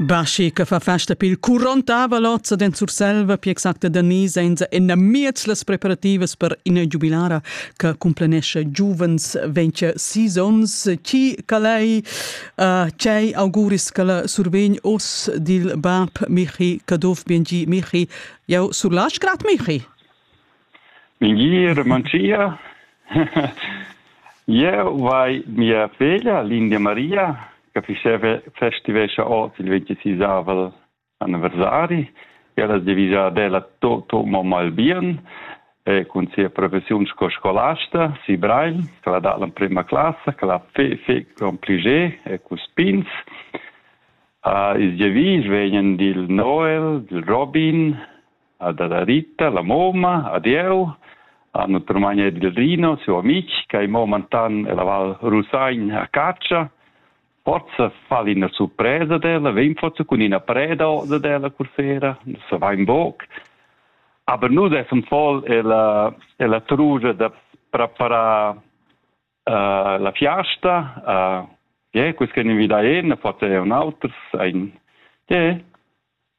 Baschi che fa festa pil 40 lozza den Surselva pi exacta da ni senza ina miez las preparativas per ina giubilara che cumplenesce giuvens 26 onns chi calei uh, cei auguris che la survegn os dil bab Michi Caduff Biengi Michi jau sur la Strat Michi Mengia Ramanschia. Jeu vai mia feglia Lindia Maria che faceva festivescha oz il 26avel anniversari. Ella es devisa ad ella tutto mo mal bien e cun sia professiun sco scolasta si Breil, che l'ha dat l'emprema classa, che l'ha fe, fe con pliger e cun spins. Uh, ils devis vegnan dil Noel, dil Robin, ha dada Rita la moma ad eu, a notre magna del Rino, siu amic, che mo mantan la Val Rusagn a caccia, forza fa ina surpresa della, vegn forza cun ina preda osa della cursera, se va in boc. Aber nus essem voll ella, ella trugia da preparar uh, la fiasta, uh, yeah, quis che invida en, forza un auters, ein, yeah,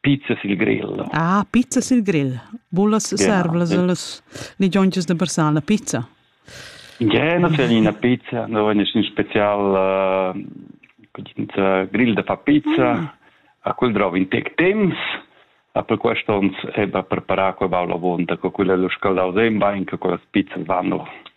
Pizza sil grill. Ah, pizza sil grill. Vulas ja. servlas las ligionchas da Barsala pizza? Ja, no c'è una pizza, no è nessun special uh, grill da fa pizza. Ah. A quel drov in tec temps. A per quest'ons è ba preparar quella avonta, co quella lo scaldau sein bain, che quelle pizzas vanno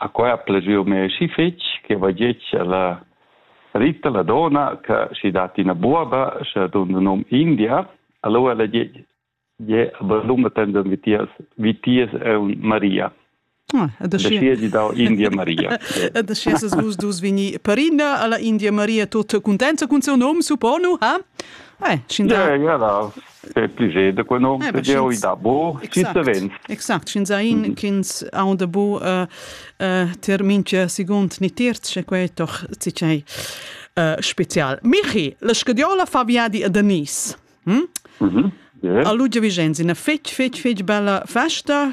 A quai ha plazü mê schi fich che vagetg la Rita, la dona, ch'ha schi dat üna buoba, scha duna nom India, alura ella gie gie avalluna tendon vitiers vitiers aunc Maria. Ah, ed aschia ed aschia dau India Maria. Ed aschia ses vus dus vegni perina alla India Maria tut cuntenza cun seu nom, supponu, ha? Eh, schin da. Ja, ja, da pli ge da quei nom tgeu i da bo chi savens exact sch'ins sa in ch'ins ha da bo termin che segund ni terz che quei doch tgei spezial Michi la scadiola fa viadi a Denise hm? yeah. a Lugia Vigenzi na fetg fetg fetg bella festa